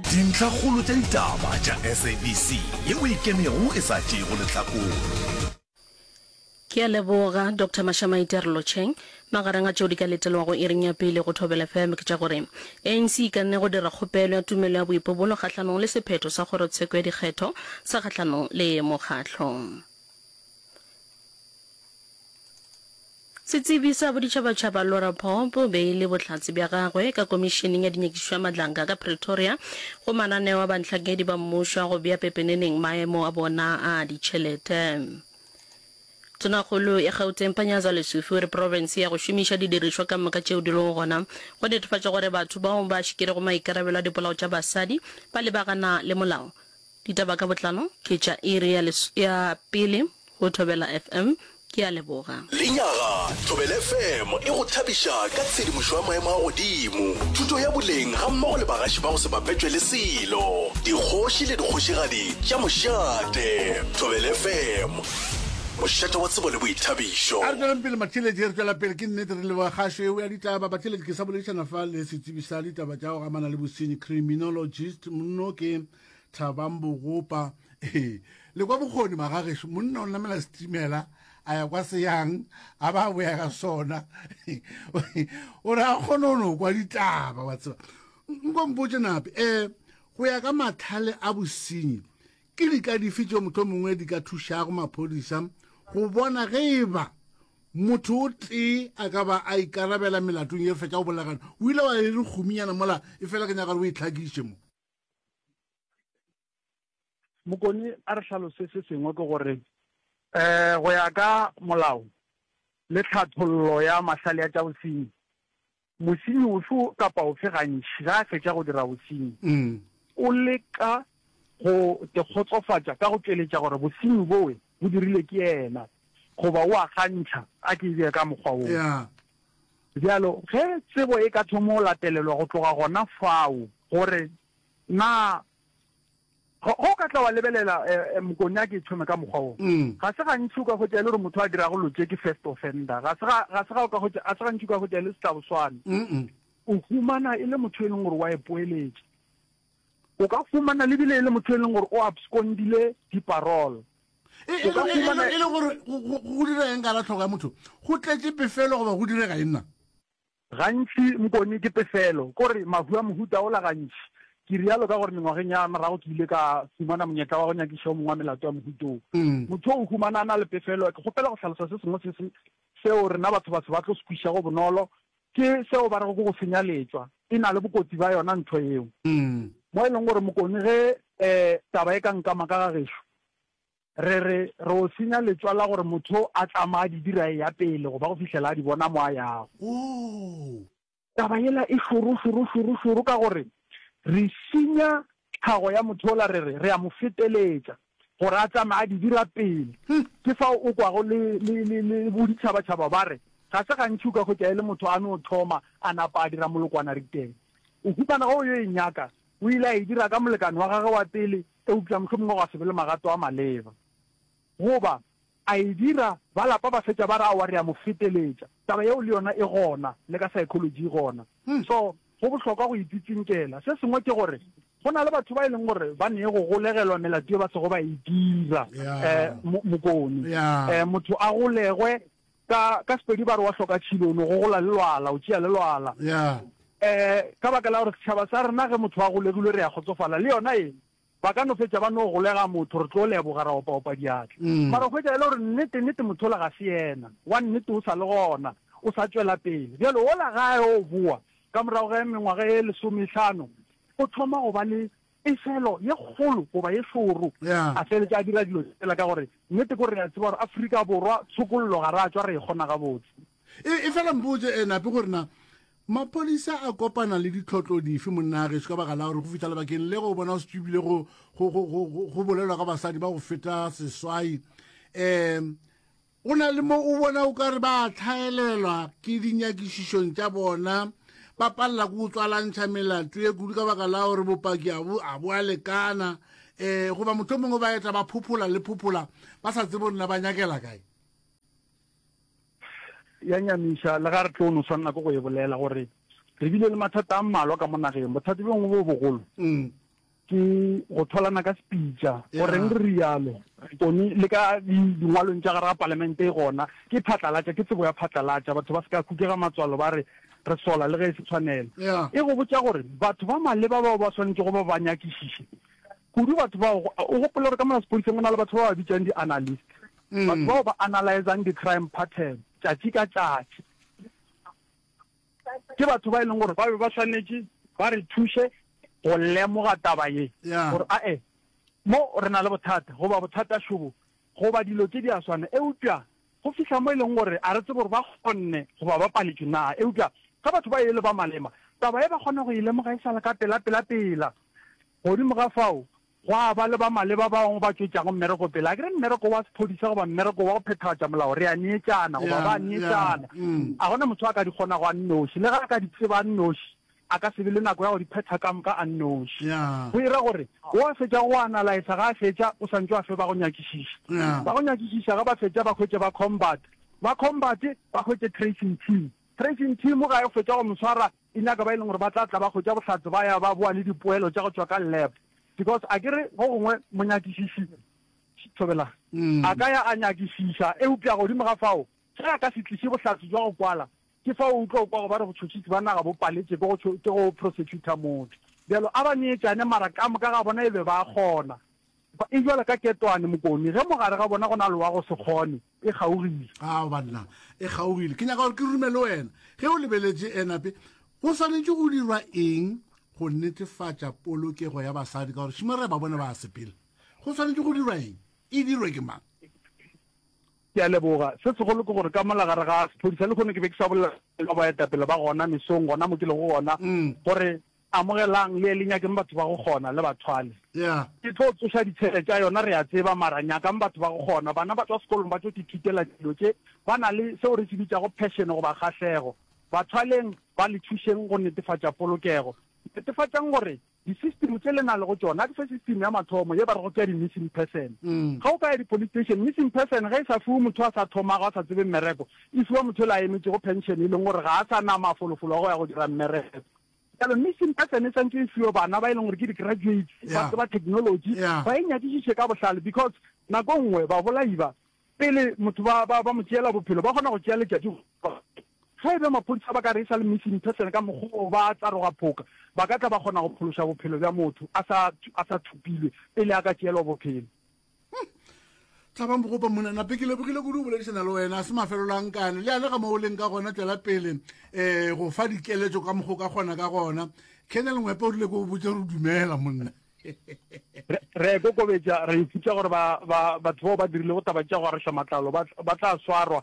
Dintlhakgolo tša ditaba tša SABC ye o e kenego e sa tšeego lehlakore. Ke a leboga Doctor Mashamaite re lotšheng. Magareng a tšeo di ka letelwago iring ya pele go Thobela FM ke tša gore ANC e kanne go dira kgopelo ya tumelo ya boipobolo kgahlanong le sephetho sa kgorotsheko ya dikgetho sa kgahlanong le mokgatlo Setsebi sa boditšhabatšhaba Laura Popp o beile bohlatse bja gagwe ka Komišeneng ya Dinyakišišo ya Madlanka ka Pretoria go mananeo a bantlhakedi ba mmušo a go bea pepeneneng maemo a bona a ditšhelete. Tonakgolo ya Gauteng Panyaza Lesufi o re profense ya go šomiša didirišwa ka moka tšeo di lego gona go netefatša gore batho bao ba šikirego maikarabelo a dipolao tša basadi ba lebagana le molao. Ditaba ka botlalo ke tša iri ya, ya pele go Thobela FM. Ke a leboga. Lenyaga, Thobela FM e go thabiša ka tshedimošo ya maemo a godimo, thuto ya boleng gammogo le bagaši ba go se bapetšwe le selo, dikgoši le dikgošigadi tša mošate. Thobela FM, mošate wa tsebo le boithabišo. A re tšweleng pele Matheletši, re tšwela pele ke nnete re leboga kgašo eo ya ditaba. Batheletši, ke sa boledišana fa le setsebi sa ditaba tša go amana le bosenyi, criminologist, mno ke. tlhabang bogopa ee le kwa bokgoni magageso monna o namela setimela a ya kwa seyang a ba boya ka sona o re a kgone o no kwa ditaba wa tseba nkompotse nape um go ya ka matlhale a bosenyi ke di ka dife tse motho mongwe di ka thušago maphodisa go bona ge e ba motho o tee a ka ba a ikarabela melatong ye fetša go bolagana o ile wa e re gominyana mola e fela ke nyaka gore o e tlhakiše mo Mokoni a re hlalose se sengwe ke gore um go ya ka molao le tlhathollo ya mahlale a tša bosenyi, mosenyi ofe kapa ofe gantši ge a fetša go dira bosenyi o leka go tekgotsofatša ka go tšweletša gore bosenyi bowe Bo dirilwe ke yena, goba o a kgantšha, a ke e bee ka mokgwa woo. Bjalo, ge tsebo e ka thoma go latelelwa go tloga gona fao, gore na, ge o ka tla wa lebelela Mokonyaki e thome ka mokgwa woo, ga se gantši o ka hwetša e le gore motho a dirago dilo tše ke first offender. Ga se, ga se ga o ka hwetša, ga se gantši o ka hwetša e le setlaboswane. O humana e le motho e leng gore wa ipoeletša. O ka fumana lebile e le motho e leng gore o abscondile di-parole. E, e, e, e, e le gore go dira eng ka la tlhogo ya motho? Go tletše pefelo goba go direga eng na? Gantši mokone ke pefelo, kore mahu a mohuta ola gantši. Ke rialo ka gore mengwageng ya morago ke ile ka fumana monyetla wa go nyakiša o mongwe wa melato ya mohuta o. Mm. Motho o humana a na le pefelo. Ke kgopela go hlalosa se sengwe se se seo rena batho batho ba tlo se kwišago bonolo Ke seo ba rego ke go senya letšwa. E na le bokotsi bja yona ntho yeo. Mo e leng gore mokoni ge taba e ka nkama ka ga gešo, re re re o senya letšwa la gore motho a tlama a di dira e ya pele goba go fihlela a di bona mo a yago. Taba yela e šoro, šoro, šoro, šoro ka gore re senya Tlhago ya Mothola re re re a mo feteletša gore a tsamaya a di dira pele. Ke fao o kwago le, le, le, le boditšhabatšhaba ba re, Ga se gantši o ka hwetša e le motho a no thoma a napa a dira molokwana riteng. O humana ge o yo e nyaka, o ile a e dira ka molekane wa gagwe wa pele, eupša mohlomongwe gwa se be le magato a maleba. Goba, A e dira, ba lapa ba fetša ba re, Aowa, re a mo feteletša. Taba yeo le yona e gona, le ka psychology e gona. So, go bohlokwa go e tsitsinkela. Se sengwe ke gore, go na le batho ba e leng gore ba nee go golegelwa melato ye ba sego ba e dira. Um, mo, mokone. Um, motho a golegwe, ka, ka Sepedi ba re wa hloka tšhilo, o no go gola le lwala, o tšea le lwala. Um, ka baka la gore setšhaba sa rena ge motho a golegilwe re a kgotsofala, le yona e, Ba ka no fetša ba no golega motho, re tlo leboga, ra opaopa diatla. Mara o hwetša e le gore nnete, nnete motho ola ga se yena. Wa nnete o sa le gona, o sa tšwela pele. Bjale ola ge a yo boa ka morago ga mengwaga e lesomehlano, o thoma go ba le pefelo ye kgolo goba ye šoro. A feletša a dira dilo tsela ka gore nnete ke gore re a tseba gore Afrika Borwa tshokollo ga re a tšwa re e kgona gabotse. E, efela mpotse e nape gore na maphodisa a kopana le ditlhotlo dife monnageso ka baka la gore go fitlha lebakeng le go bona o se tsebile go go- go- go- go- go bolelwa ka basadi ba go feta seswai um go na le mo o bona o ka re ba tlhaelelwa ke dinyakišišong tša bona ba palela ko go tswalantšha melato ye kudu ka baka la gore bopaki a bo a bo a lekana um goba mohlho mongwe ba eta ba phophola le phophola ba sa tsebe gore na ba nyakela kae ya nyamiša le ga re tlo no swanela ke go e bolela gore re bile le mathata a mmalwa ka mo nageng bothata bongwe bo bogolo mm. ke go tholana ka sepitša goreng re rialo one le ka dingwalong tša gare ga palamente e gona ke phatlalatša ke tsebo ya phatlalatša batho ba se ka khukega matswalo ba re re sola le ge e se tshwanelo e go botša gore batho ba maleba bao ba swanetše go ba ba nyakišiše kudu batho bao o gopole gore ka mona sepodiseng go na le batho ba ba bitsang di-analyst Batho bao ba analyzang di-crime pattern tšatši ka tšatši ke batho ba e leng gore ba be ba swanetše ba re thuše go lemoga taba ye gore ae mo re na le bothata goba bothata šobo goba dilo tše di a swana. Eupša go fihla mo e leng gore a re tsebe gore ba kgonne goba ba paletšwe na. Eupša ge batho ba e le ba malema taba ye ba kgona go e lemoga e sa le ka pela-pela-pela. Godimo ga fao, gwa ba le ba maleba ba bangwe ba tšwetšago mmereko pele, a ke re mmereko wa sephodisa goba mmereko wa go phethagatša molao, re a neetšana goba ba a neetšana. A go na motho a ka di kgonago a nnoši. Le ge a ka di tseba a nnoši, a ka se be le nako ya go di phetha ka moka a nnoši. Go e ra gore, o a fetša go analaesa, ge a fetša, o sa ntše a fe ba go nyakišiša. Ba go nyakišiša ge ba fetša ba hwetše ba combat, ba combat ba hwetše tracing team. Tracing team ga e fetša go mo swara, E nyaka ba e leng gore ba tla tla ba hwetša bohlatse ba ya ba boa le dipoelo tša go tšwa ka lab because a ke re go gongwe monyakišiši, Thobela, a ka ya a nyakišiša eupša godimo ga fao ge a ka se tliše bohlatse bja go kwala ke fao o tlo kwago ba re botšhotšhisi ba naga bo paletše ke go ke go prosecutor motho. Bjalo a ba neetšane mara ka moka ga bona e be ba a kgona. E bjalo ka Ketwane, Mokomi ge mo gare ga bona go na le wa go se kgone. E kgaogile. Ao, banna, e kgaogile. Ke nyaka gore ke rume le wena. Ge o lebeletše enape, go swanetše go dirwa eng go netefatša polokego ya basadi, ka gore šimo re a ba bona ba a sepela? Go swanetše go dirwa eng? E dirwe ke mang? Ke a leboga. Se segolo ke gore ka mola gare ga sephodisa, lehono ke be ke sa bolela ka boetapele ba gona mesong, gona mo ke lego gona, gore Amogelang le ye le nyakeng batho ba go kgona le bathwale. Ke tlo tsoša ditshele tša yona re a tseba mara nyakang batho ba go kgona. Bana ba tšwa sekolong ba tšo ithutela dilo tše ba na le seo re se bitšago passion goba kgahlego. Bathwaleng ba le thušeng go netefatša polokego. Netefatšang gore di system tše le na lego tšona di fe system ya mathomo ye ba rego ke ya di missing person. Ge o ka ya di police station missing person ge e sa fiwe motho a sa thomago a sa tsebeng mereko e fiwa motho yola a emetšego pension e leng gore ga a sa na mafolofolo a go ya go dira mmereko. Bjale mission e tsena e santse e fiwe bana ba e leng gore ke di-graduates, ba Yeah. tseba technology, Yeah. ba e nyakišiše ka bohlale because nako e nngwe babolai ba, pele motho ba, ba, ba mo tšeela bophelo, ba kgona go tšea letšatši go Ge e be maphodisa ba ka re e sa le missing person ka mokgwa o ba tsaroga phoka, ba ka tla ba kgona go phološa bophelo bja motho a sa, a sa thopilwe pele a ka tšeelwa bophelo. tlabang bogopa mona nape ke lebogile kudu boledišana le wena se mafelelo a nkane le yane ga mo o leng ka gona tswela pele um eh, go fa dikeletso ka mokgo ka gona ka gona kennel ngwepe o rile ko o botse re dumela monna re kokobetša re iputsa gore batho bao ba dirile go taba tša go arešwa matlalo ba tla swarwa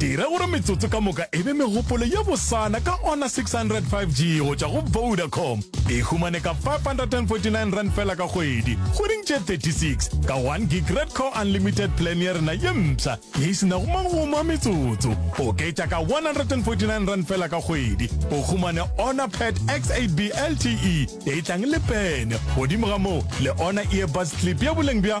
Dira gore metsotso ka moka e be megopolo ye bosana ka ona 600 5G go tšwa go Vodacom. E humane ka 549 rand fela ka kgwedi, kgweding tše 36, ka 1 gig Red Core Unlimited plan ya rena ye mpsha ye e senago magomo a metsotso. Oketša ka 149 rand fela ka kgwedi, o humane ona Pad X8B LTE e tlang le pene, godimo ga moo le ona earbuds clip ya boleng bja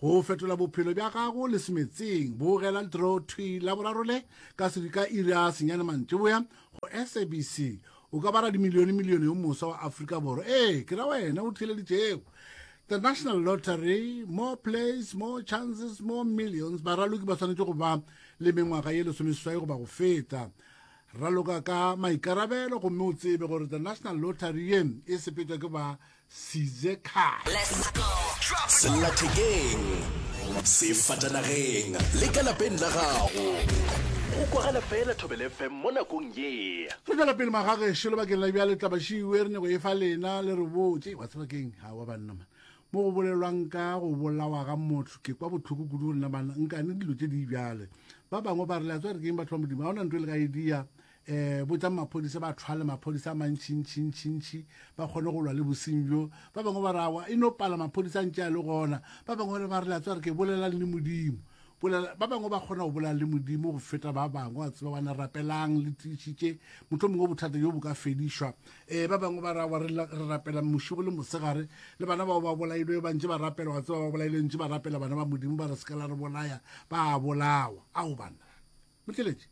Go fetola bophelo bja gago le semetseng, bogela Draw Thwi Laboraro le ka sedi ka iri ya senyane mantšiboya go SABC. O ka ba radimilionemilione yo moswa wa Afrika Borwa. Ee, ke ra wena o theeleditšego. The National Lottery, More Plays, More Chances, More Millions. Baraloki ba swanetše go ba le mengwaga ye lesomeseswai goba go feta. Raloka ka maikarabelo gomme o tsebe gore The National Lottery ye e sepetšwa ke ba size car sellathekeng sefatanageng le ka lapeng la gago go kwagala fela thobel fm mo nakong ye re tla lapele magageše lebakeng la bjale tlabašiwe re nyako e fa lena le re botse wa tsebakeng ga wa banna man mo go bolelwang ka go bolawa ga motho ke kwa botlhoko kudu go nna banna nkane dilo tše di bjale ba bangwe ba re le a tswa re keng batho ba modimo ga ona ntho e le ka idea um botšang maphodisa ba thwale maphodisa a mantšhintšhintšhintšhi ba kgone go lwa le bosing bjo ba bangwe ba rawa e no pala maphodisa ntše a le gona ba bangwe ba re ba re latso re ke bolelang le modimo ba bangwe ba kgona go bolela le modimo go feta ba bangwe a tseba bana rapelang le tiišitše motlho mongwe bothata jo bo ka fedišwa um ba bangwe ba rawa re rapela mošibo le mosegare le bana bao ba bolailwe ba ntše ba rapela wa tseba ba bolailwe ntše ba rapela bana ba modimo ba re se ka la re bolaya ba bolawa ao banna Motšweletši,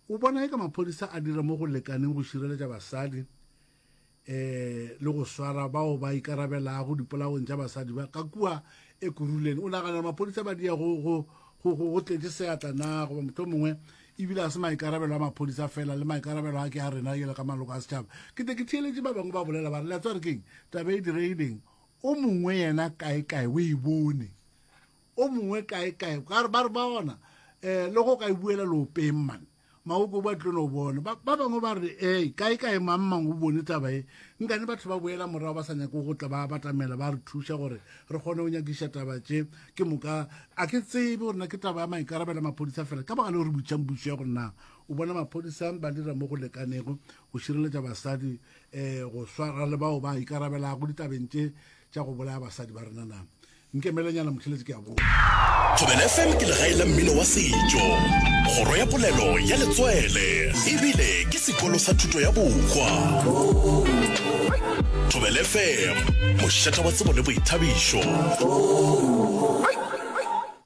O bona eka maphodisa a dira mo go lekaneng go šireletša basadi um le go swara bao ba ikarabelago dipolaong tša basadi ba ka kua Ekurhuleni? O nagana gore maphodisa ba dia go go go go go tletše seatla na goba mohlho mongwe ebile a se maikarabelo a maphodisa fela le maikarabelo a ke a rena yela ka maloko a setšhaba? Ke te ke theeletše ba bangwe ba bolela ba re letswa re keng taba e diregileng o mongwe yena kaekae o e bone o mongwe kae kae ka re ba re ba gona eh le go ka e buela lopeng man maoko ba tlo no bona ba ba bangwe ba re eh kae kae mang mang o bone taba e nka ne batho ba boela morago ba sa nyako go tla ba batamela ba re thuša gore re kgone go nyakiša taba tše ke moka a ke tsebe gore na ke taba ya maikarabelo maphodisa fela ka baka le gore butšang bušo ya gore na o bona maphodisa ba dira mo go lekanego go šireletša basadi eh go swara le bao ba ikarabelago ditabeng tše tša go bolaya basadi ba rena na Nkemelenyana Mothelezi ke a boa. Thobela FM ke legae la mmino wa setšo, kgoro ya polelo ya letswele e bile ke sekolo sa thuto ya bohwa. Thobela FM, mošata wa tsebo le boithabišo.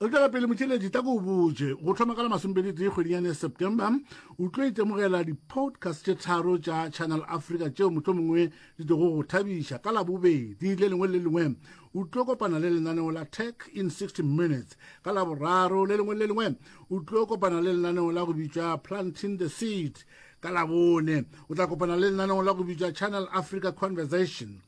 Re tšwela pele motšheletši ta ko o botše go thoma ka la masompedi tee kgwedinyane ya september o tlo itemogela di-podcast tše tharo tša channel africa tšeo mohlomongwe di tlogo go thabiša ka labobedi le lengwe le lengwe o tlo kopana le lenaneo la tech in 60 minutes ka laboraro le lengwe le lengwe o tlo kopana le lenaneo la go bitša planting the seed ka labone o tla kopana le lenaneo la go bitša channel africa conversation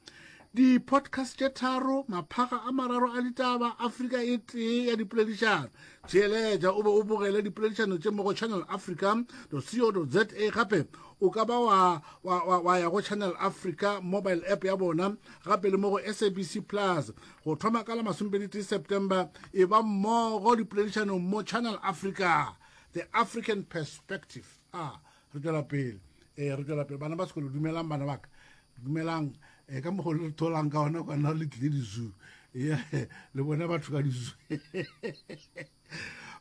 di-podcast tše tharo maphaga a mararo a ditaba afrika e tee ya dipoledišano theeletša o be o bogele dipoledišano tše mo go channel africa co za gape o ka ba wa, wa, wa, wa ya go channel africa mobile app ya bona gape le mo go sabc plus go thoma ka la masomepedi september e ba mmogo dipoledišanong mo channel africa the african perspective a ah, re tšwela pele e re tšwela pele bana ba sekolo dumelang bana baka dumelang e ka mokgolo le tholang ka ona kwana le tlile dizu le bone batho ka dizu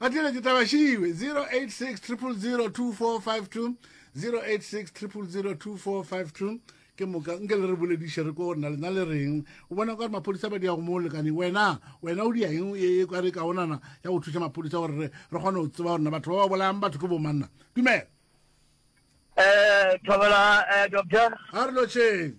ba tlile ke taba šiwe 0860002452 0860002452 ke moka nke le re bolediše re ko gore na lena le reng o bona ka gore maphodisa ba di ya go mo lekane wena wena o dia eng e ka re kaonana ya go thuša maphodisa gore re kgone go tseba gorena batho ba ba bolayang batho ke bomanna dumela um thobela um doctor a re lotšheng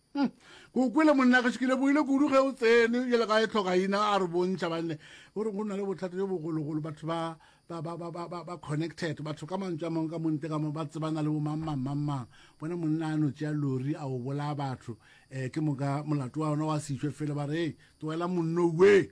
Hmm. ko kwele monnageso ke lebogile kudu ge o tsene jale ga e tlhoka ina a re bontšha banne o re go na le bothata jo bogologolo batho ba ba connected batho ka mantswe a mangwe ka monte ka ba tsebana le bomangmangmangmang bona monna a no tšea lori a o bolaya batho um ke moka molato wa yona wa sešwe fele ba re e tloela monno ue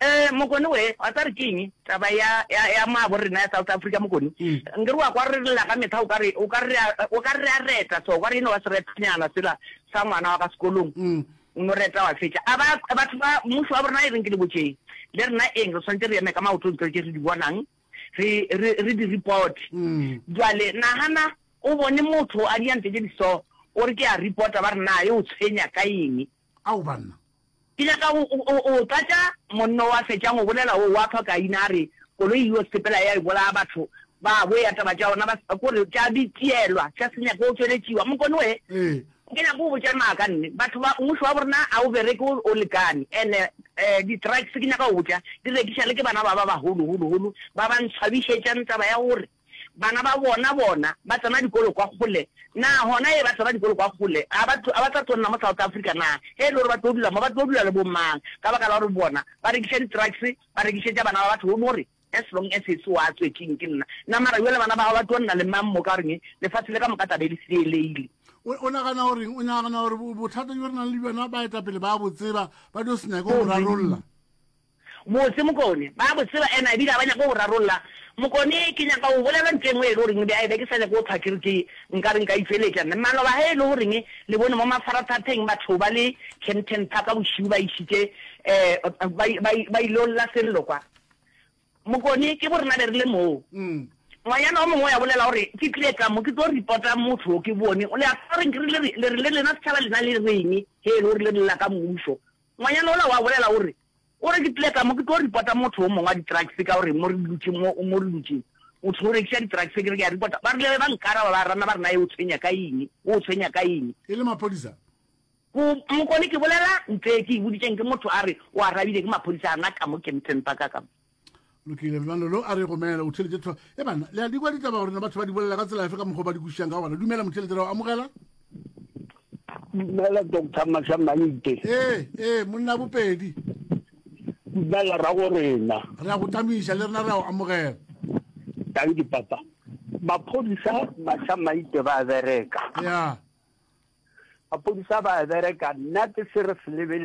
Ee mokoni we, wa tseba re ke eng? Taba ya, ya, ya maabo rena ya South Africa mokoni. Nke re wa kwa re lla ka mehla, o ka re, o ka re, o ka re a reta so, o ka re eno wa seretanyana sela sa ngwana wa ka sekolong, o no reta wa fetša. A ba, batho ba, mmušo wa borena e reng ke le botšeng, le rena eng, re swanetše re eme ka maoto ntlo tše re di bonang, re, re, re di reporte. Bjale nagana, o bone motho a dia ntlo tše di so, o re ke a reporta, ba re naa e o tshwenya ka eng? Ao, banna! Ke nyaka go o tlatša. Monna o a fetša go bolela o wa phaka ina a re, Koloi yeo sepela ya e bolaya batho ba bo ya taba tša ona ba se ko re tša bitielwa tša se nyake go tšweletšiwa. Mokone we, ke nyaka go botša maaka nne. Batho ba, mmušo wa borna a o bereke o lekane. And di trucks ke nyaka go botša di rekiša le ke bana ba ba baholo holo holo ba ba ntshwabišetšang taba ya gore. Bana ba bona bona ba tsena dikolo kwa kgole na? Hona ee, ba tsena dikolo kwa kgole. A ba, a ba tla tlo nna mo South Africa na? Ge e le gore ba tlo dula mo, ba tlo dula le bo mang? Ka baka la gore bona ba rekiša di-trucks, ba rekišetša bana ba batho, o no re, As long as e se wa tswetsing, ke nna. Na mara bjale bana ba gago ba tlo nna le mang mo? Ka goreng lefase le ka moka tla be le seeleile. O, o nagana goreng? O nagana gore bothata bjo re nang le bjona baetapele ba a bo tseba, ba tlo se nyake go bo rarolla? Botse Mokone, ba bo tseba and a bile a ba nyaka go rarolla. Mokone, ke nyaka go bolela ntho engwe e le goreng bjale be ke sa nyake go thwa ke re ke nka re nka e tšweletša. Mme maloba ge e le goreng le bone mo mafarathatheng batho ba le Kempton Park bošego ba išitše ba ba il'o lla Sello kwa. Mokone, ke bo rena be re le moo. Ngwanyana o mongwe o ya bolela gore ke tlile ka mo ke tlo reporta motho o ke bone. Le a tseba goreng ke re le re le lena setšhaba lena le reng ge e le gore le re lla ka mmušo. Ngwanyana ola o a bolela, o re, O re, ke tlile ka mo, ke tlo ripota motho o mongwe wa ditrakse, ka gore mo re dutše, mo, mo re dutše, motho o rekiša ditrakse, ke re, ke a ripota. Ba rile ge ba nkaraba, ba rana, ba re, Na e o tshwenya ka eng? O o tshwenya ka eng? E le maphodisa? Go, Mokone, ke bolela, Ntsee, ke e boditšeng, ke motho a re o arabile, ke maphodisa a na ka mo Kempton Park, ka mo. lokile lenalo lo a re gomela o theletše tlho e bana le a di kwa ditaba gore na batho ba di bolela ka tsela efe ka mokgwa ba di kwešišang ka gona dumela motheletše ra o amogela dumela doctor matlhamanite ee ee monna bopedi dumela ra go rena re a go tamiša le rena ra o amogela tang ke papa maphodisa matlhamaite ba bereka ya maphodisa ba bereka nna ke se re se lebele